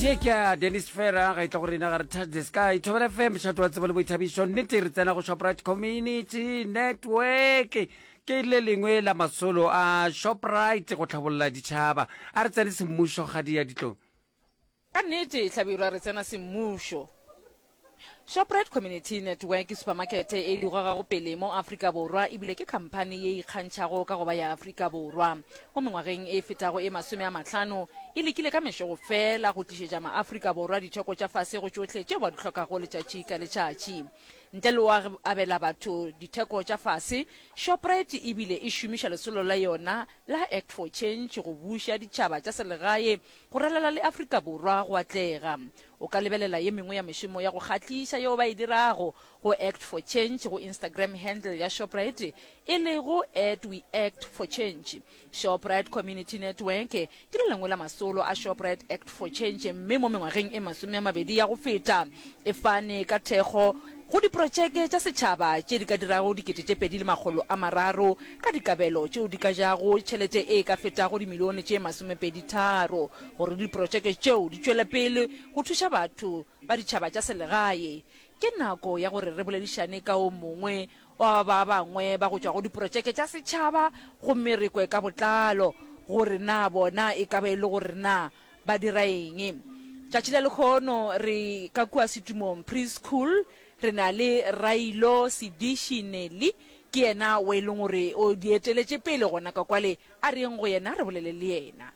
ye ke a dennis fera ga itla go rena ga re touch the sky thobela fm šhato wa tsebo le boithabišo nnete re tsena go shoprite community network ke le lengwe la masolo a shoprite go tlhabolola ditšhaba a re tsene semmušo kgadi ya ditlong ka nnete hlabirwa re tsena semmušo Shoprite Community Network ke supamakete e e digogago pele mo Afrika Borwa e bile ke khamphani ye e ikgantšhago ka go ba ya Afrika Borwa. Mo mengwageng e fetago e masome a mahlano, e lekile ka mešo go fela go tlišetša ma-Afrika Borwa ditheko tša fase go tšohle tšeo ba di hlokago letšatši ka letšatši. Ntle le go abela batho ditheko tša fase, Shoprite e bile e šomiša lesolo la yona la Act for Change go buša ditšhaba tša selegae go ralala le Afrika Borwa go atlega. O ka lebelela ye mengwe ya mešomo ya go kgahliša yeo ba e dirago go Act for Change go Instagram handle ya Shoprite e lego at WeActForChange. Shoprite Community Network ke le lengwe la masolo a Shoprite Act for Change mme mo mengwageng e masome a mabedi ya go feta e fane ka thekgo go diprotšeke tša setšhaba tše di ka dirago dikete tše pedi le makgolo a mararo ka dikabelo tšeo di ka jago tšhelete e ka fetago dimilione tše masomepedi tharo Gore diprotšeke tšeo di tšwele pele go thuša batho ba ditšhaba tša selegae, ke nako ya gore re boledišane ka o mongwe wa ba bangwe ba go tšwa go diprotšeke tša setšhaba gomme re kwe ka botlalo gore na bona e ka ba e le gore na ba dira eng. Tšatši la lekhono re ka kua Setumong Preschool re na le Railo Sediši Nelly, ke yena o e leng gore o di eteletše pele gona ka kwale. A reng go yena? Re bolele le yena.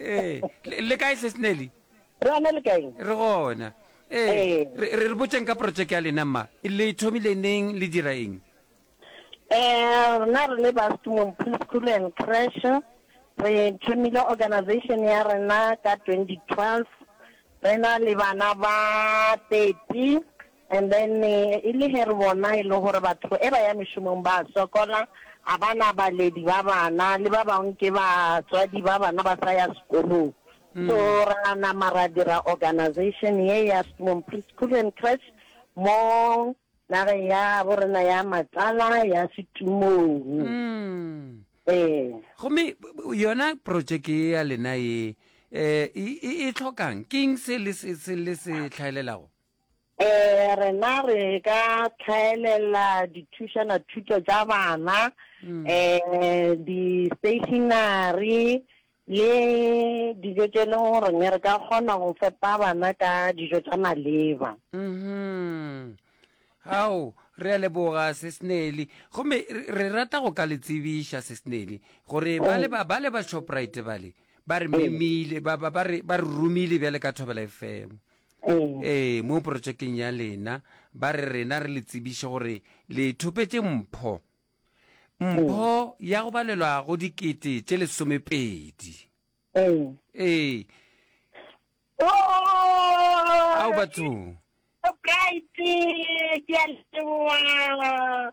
ee le kae tlhe snelly re ana le kaeng re gona ee re botseng ka projeke ya lena mma le thomile neng le dira eng um rena re le ba stumong preschool and crash re thomile organization ya rena ka twenty twelve re na le bana ba thirty And then e le ge re bona e le gore batho e ba ya mešomong ba a sokola, ga ba na baledi ba bana, le ba bangwe ke batswadi ba bana ba sa ya sekolong. So ra nama ra dira organization ye ya Sturm Preschool and Crèche mo nageng ya bo rena ya Matlala ya Setumong. Ee. Gomme yona projeke ye ya lena ye um e e tlhokang, ke eng se le se se le se tlhaelelago? Eh rena re ka tlhaelela dithušana thuto tša bana mm. eh di stationary le dijo tše leng gore ne re ka kgona go fepa bana ka dijo tša maleba mm-hmm. ao re a leboga sesnely gomme re rata go ka le tsebiša sesnely gore ba le ba le ba shoprite bale ba re memile ba re romile bjale ka thobela efemo Ee, mo porotšekeng ya lena, ba re rena re le tsebiše gore le thopetše mpho. Mpho ya go balelwa go dikete tše lesomepedi. Ee. Ao batho. Bright, ke a leboa.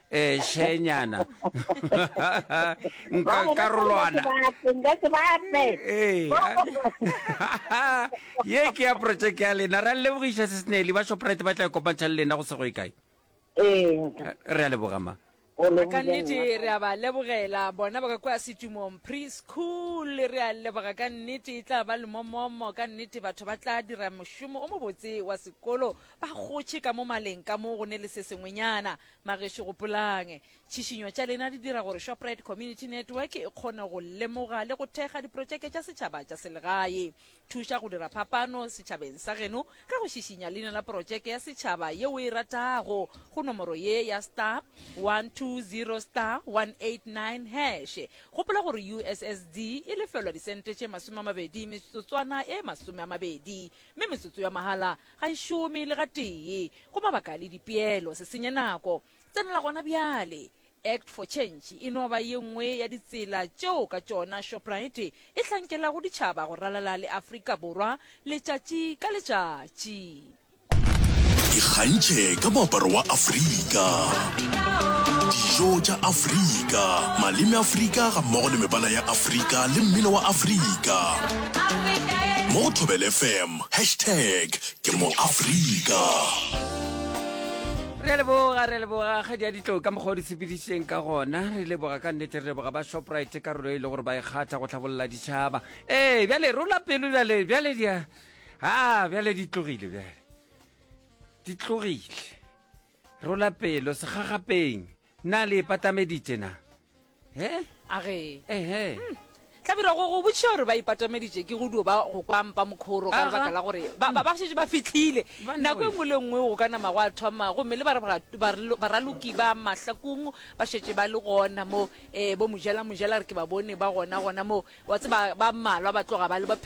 eshenyana nka karolwana ye ke ya project ya lena re a lebogiša se senele ba shoprite ba tla kopantšha le lena go sego e kae re a leboga ma ka nnete re a ba lebogela bona ba ka kwa setumong preschool re a leboga ka nnete e tla ba lemomomo ka nnete batho ba tla dira mošomo o mobotse wa sekolo ba gotšhe ka mo maleng ka mo go ne le se sengwenyana Bagešo gopolang, tšhišinyo tša lena di dira gore Shoprite Community Network e kgone go lemoga le go thekga diprotšeke tša setšhaba tša selegae. Thuša go dira phapano setšhabeng sa geno ka go šišinya leina la protšeke ya setšhaba ye o e ratago go nomoro ye ya star 120 star 189 hash. Gopola gore USSD e lefelwa disente tše masome a mabedi metsotswana e masome a mabedi, mme metsotso ya mahala Ga e šome le gatee. Go mabaka le dipeelo. Se senye nako. Tsenela gona bjale. Act for Change e no ba ye nngwe ya ditsela tšeo ka tšona Shoprite e hlankelago ditšhaba go ralala le Afrika Borwa letšatši ka letšatši. Ikgantšhe ka moaparo wa Afrika, dijo tša Afrika, maleme a Afrika gammogo le mebala ya Afrika le mmino wa Afrika mo go Thobela FM. Facebook, Hashtag ke mo Afrika. Re a leboga re a leboga kgadi ya ditlo ka mokgwa o di sepedišitšeng ka gona re leboga ka nnete re leboga ba shoprite karolo e le gore ba e kgatha go tlhabolola ditšhaba ee bjale rola pelo bjale bjale di a a bjale di tlogile bjale di tlogile rola pelo segagapeng Na le ipatameditše na? He? A ge. Ehe. Hmm. Hlabirwa go go botšiša gore ba ipatameditše ke go dio ba go kwa mpa mokhoro ka lebaka la gore ba ba šetše ba fitlhile nako e nngwe le nngwe go ka nama go a thoma gomme le baraloki ba mahlakong ba šetše ba le gona mo um bo mojela mojela re ke ba bone ba gona gona mo wa tse ba mmalwa ba tloga ba le ba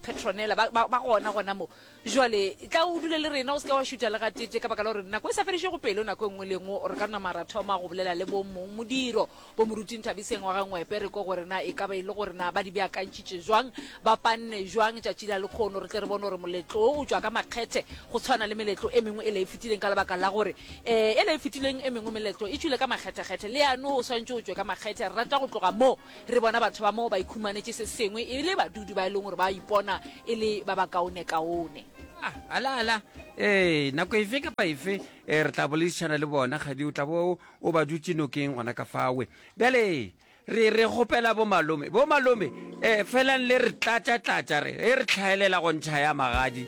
petronela ba gona gona mo Bjale, tla o dule le rena, o se ke wa šuta le gatee, ka baka la gore nako e sa fedišego pelo, nako e nngwe le e nngwe o re ka nama ra thoma go bolela le bomong modiro, bomoruting Thabiseng wa ga Ngwepe, re kwe gore na e ka ba e le gore na ba di beakantšhitše bjang, ba panne bjang tšatši la lekgono, re tle re bone gore moletlo wo o tšwa ka makgethe go tshwana le meletlo e mengwe ela e fetileng, ka lebaka la gore ee, ela e fetileng e mengwe meletlo e tšwile ka makgethekgethe, le yane o swantšwe o tšwe ka makgethe, re rata go tloga moo. Re bona batho ba moo ba ikhumanetše se sengwe e le badudi ba e leng gore ba ipona e le ba bakaonekaone. A, ala, ala, ee, nako efe kapa efe eh, re tla boledišana le bona, kgadi o tla bo o ba dutše nokeng gona ka fawe. Bjale re, re kgopela bomalome, bomalome, eh, felang le re tlatša-tlatša, re, eh, re hlaelela go ntšha ya magadi.